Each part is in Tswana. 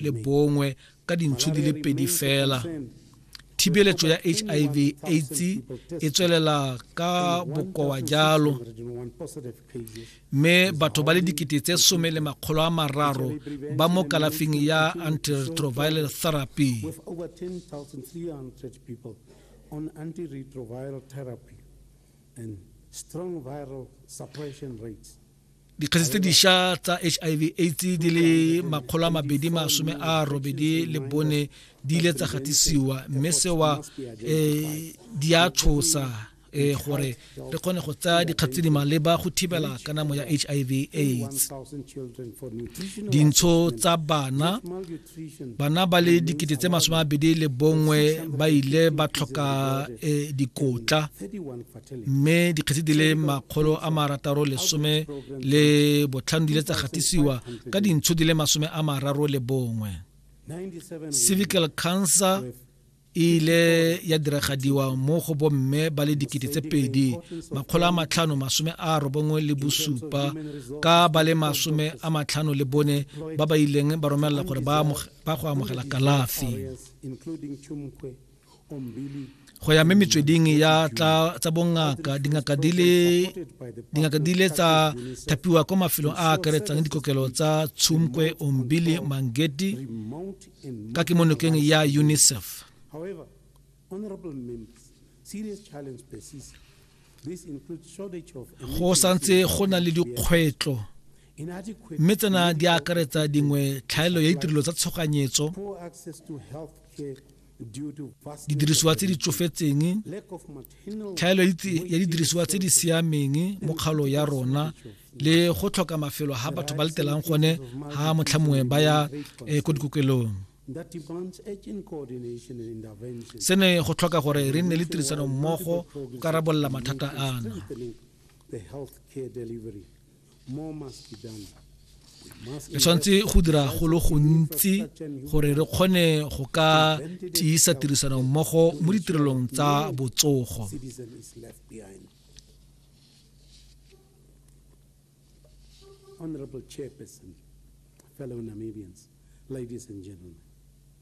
le bongwe ka dintshi di le pedi fela thibeletso ya hiv aids e tswelela ka bokowa jalo mme batho ba le dikete tse some le makgolo a mararo ba mo kalafing ya antiretroviral therapy on antiretroviral therapy and strong viral suppression rates dikgetse tse dišwa tsa hiv aids di le makgolo a mabedi masome a robedi le bone di ile tsa gatisiwa mme sewa um di a tshosa um gore re kgone go tsaya dikgatse tse di maleba go thibela kanamo ya hiv aids dintsho tsa bana bana ba le dikete tse masome a bedi le bongwe ba ile ba tlhoka e, dikotla mme dikgetse di le makgolo a marataro lesome le botlhano di ile tsa gatisiwa ka dintsho di le masome a mararo le bongwe civical cancer e ile ya diragadiwa mo go bomme ba le dikete tse pedi makgolo a matlhano masome a robongwe le bosupa ka ba le masome a matlhano le bone ba ba ileng ba romelela gore ba go amogela kalafi go ya mme metsweding ya tsa bongaka dingaka di le tsa thapiwa kwa mafelong a akaretsang dikokelo tsa tshumkwe ombili mangeti ka kemonokeng ya unicef go santse go na le dikgwetlho mme tsena di akaretsa dingwe tlhaelo ya ditirelo tsa tshoganyetso didirisiwa tse di tsofetseng tlhaelo ya didirisiwa tse di siameng mo kgalo ya rona le go tlhoka mafelo ha batho ba letelang gone ha motlha mongwe ba ya eh, ko dikokelong se ne go tlhoka gore re nne le tirisano mmogo go ka rarabolola mathata ana re tshwanetse go dira go le gontsi gore re kgone go ka tiisa tirisano mmogo mo ditirelong tsa botsogo Honorable Chairperson, fellow Namibians, ladies and gentlemen.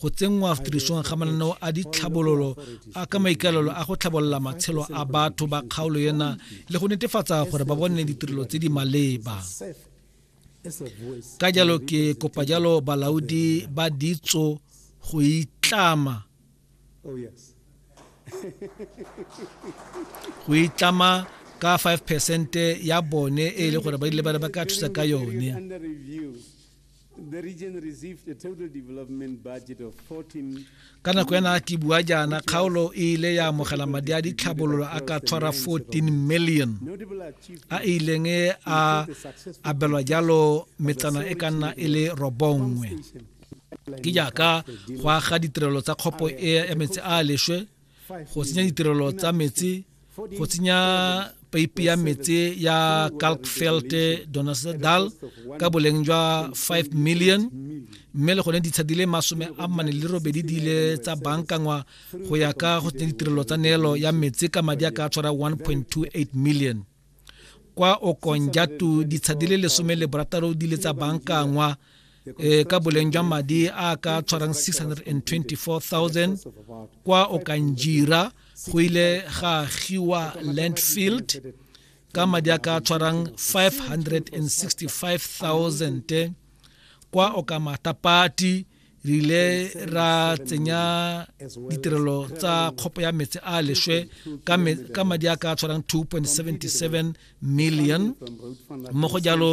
go tsenngwa tirisong ga mananeo a ditlhabololo a ka maikaelelo a go tlhabolola matshelo a batho ba kgaolo ena le go netefatsa gore ba bone ditirelo tse di maleba ka jalo ke kopa jalo balaodi ba ditso go itlama oh, go itlama ka 5 percent ya bone e le gore ba ile ba ka thusa ka yone ka nako ya na ke bua jaana kgaolo e ile ya amogela madi a ditlhabololo a ka tshwara 14 million a e ileng e a abelwa jalo metsana e ka nna e le robongwe ke jaaka go aga ditirelo tsa kgopo e ya metsi a a leswe go tsenya ditirelo tsa metsi go tsenya peipi ya metsi ya kalkfeld donasedal ka boleng jwa 5 million mme le gone ditsha di le masome a mane le robedi di ile tsa bankangwa go ya ka go tsenya ditirelo tsa neelo ya metsi ka madi a ka tshwara 1.28 million kwa okonjatu ditsha di le lesome le borataro di le tsa bankangwa e ka boleng jwa madi a ka tshwarang 624000 kwa okanjira go ile ga agiwa landfield ka madi a ka tshwarang 565000 kwa okamatapati re ile ra tsenya ditirelo tsa kgopo ya metsi a leswe ka madi a ka tshwarang 2.77 million mo go jalo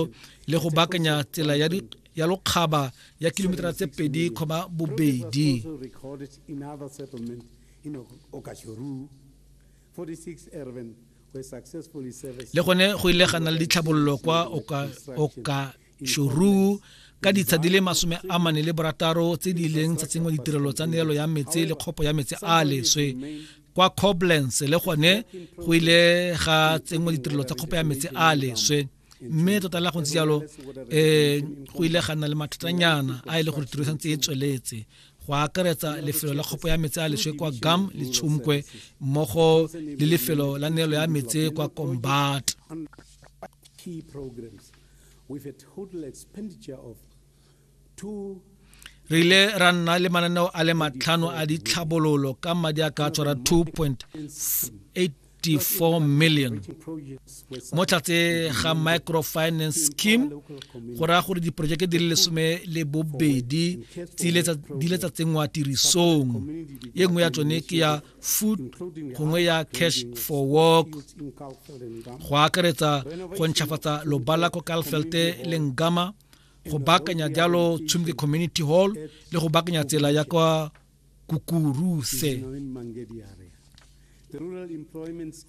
le go bakanya tsela ya ya lokgaba ya kilometera tse pedi kgoma bobedi le gone go ile ga na le ditlhabololo kwa oka shoruu ka ditsha di le masome a mane le borataro tse di leng tsa tsengwa ditirelo tsa neelo ya metse le kgopo ya metse a leswe kwa coblance le gone go ile ga tsengwa ditirelo tsa kgopo ya metse a leswe mme tota la go ntse jalo um go ile ga nna le mathatanyana a e le gore tiro e santse e tsweletse go akaretsa lefelo la kgopo ya metse a leswe kwa gam le tshomkwe mmogo le lefelo la neelo ya metse kwa combat with a total expenditure of two re ile ra nna le mananeo a le matlhano a ditlhabololo ka madi a ka tshwara 2.84 million mo tlatse ga microfinance scheme go raya gore diporojeke di le lesome le bobedi di ile tsa tsenngwa tirisong e nngwe ya tsone ke ya food gongwe ya cash for work go akaretsa go ntšhafatsa lobala ko kalfelte le ngama go baakanya jalo tshumke community hall le go baakanya tsela ya kwa kukuruse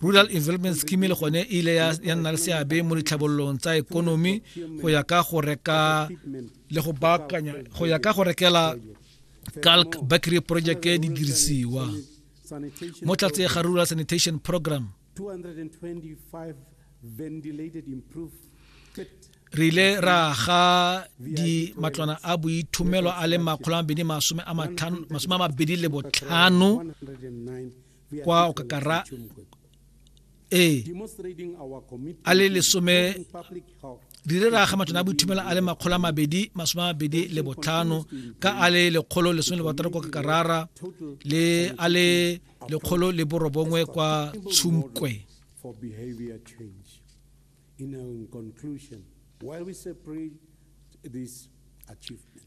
rural development scheme le gone e ile ya nna le seabe mo ditlhabololong tsa ekonomi go ya ka go reka le go baakanya go ya ka go rekela calc bakery project e di dirisiwa mo tlatse ga rural sanitation program re ile ra ga di matlwana a boithomelo a le makgolo a mabedi masome a mabedi le botlhano kwa okakara ee a le lesome di re raga matlong a boithumela a le makgolo a mabedi masome a mabedi le botlhano ka a le lekgolo lesome le botlhano kwa kakarara le a le lekgolo le borobongwe kwa tshumkwe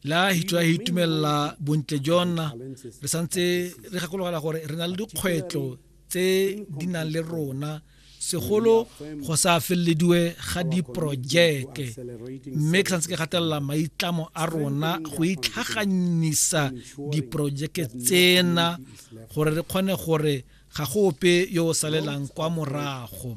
la history ya itumelela bontle jona re santse re gakologela gore re na le dikgwetlho tse di nang le rona segolo go sa felelediwe ga diporojeke mme ke santse ke gatelela maitlamo a rona go itlhaganyisa diporojeke tsena gore re kgone gore ga go ope yo o salelang kwa morago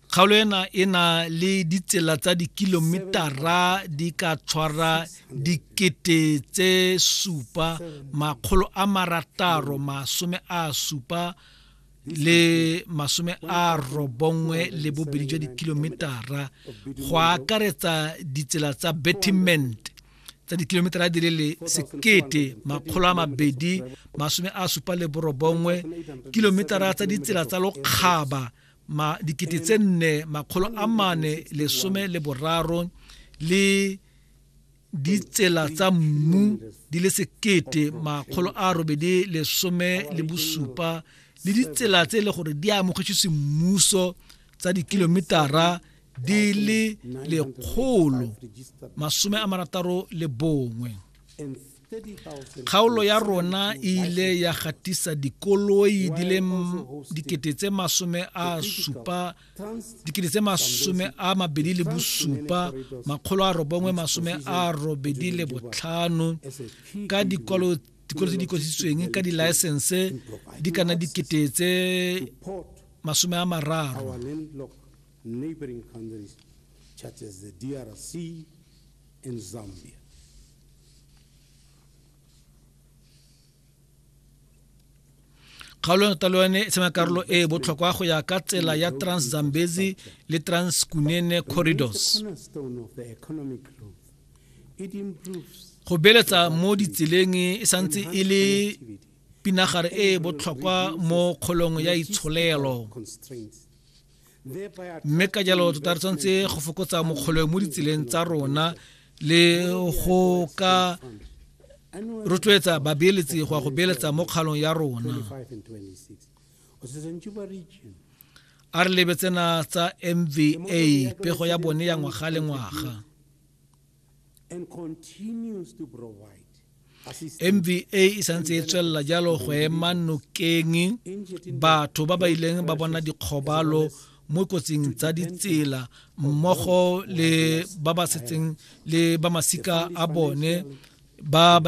kgaolo ena e na le ditsela tsa dikilometara di ka tshwara dikete tse supa makgolo a marataro masome a supa le masome a robongwe le bobedi jwa dikilometara go akaretsa ditsela tsa betiment tsa dikilometara di le sekete makgolo a mabedi masome a supa le borobongwe kilometara tsa ditsela tsa lokgaba ma dikete tse nne makgolo a mane lesome le boraro le ditsela tsa mmu di le sekete makgolo a robedi lesome le bosupa le ditsela tse e le gore di amogetswe semmuso tsa dikilometara di le lekgolo masome a marataro le bongwe kgaolo ya rona e ile ya gatisa dikoloi di le dikete tse masome a supa dikete tse masome a mabedi le bosupa makgolo a robongwe masome a robedi le botlhano ka dikwalo dikolo tse di kwasitsweng ka dilaesense di kana dikete tse masome a mararo in Zambia. kgaolo ya talo yone e tshema karolo e e botlhokwa go ya ka tsela ya transzambezi le transkunene corridors go beletsa mo ditseleng e santse e le pinagare e e botlhokwa mo kgolong ya itsholelo mme ka jalo tota re tshwanetse go fokotsa mokgolwe mo ditseleng tsa rona le go ka rotloetsa babeeletsi go ya go beeletsa mo kgalong ya rona a re lebetsena tsa mva pego ya bone ya ngwaga le ngwaga mva e santse e tswelela jalo go ema nokeng batho ba ba ileng ba bona dikgobalo mo kotsing tsa ditsela mmogo le ba ba setseng le ba masika a bone ba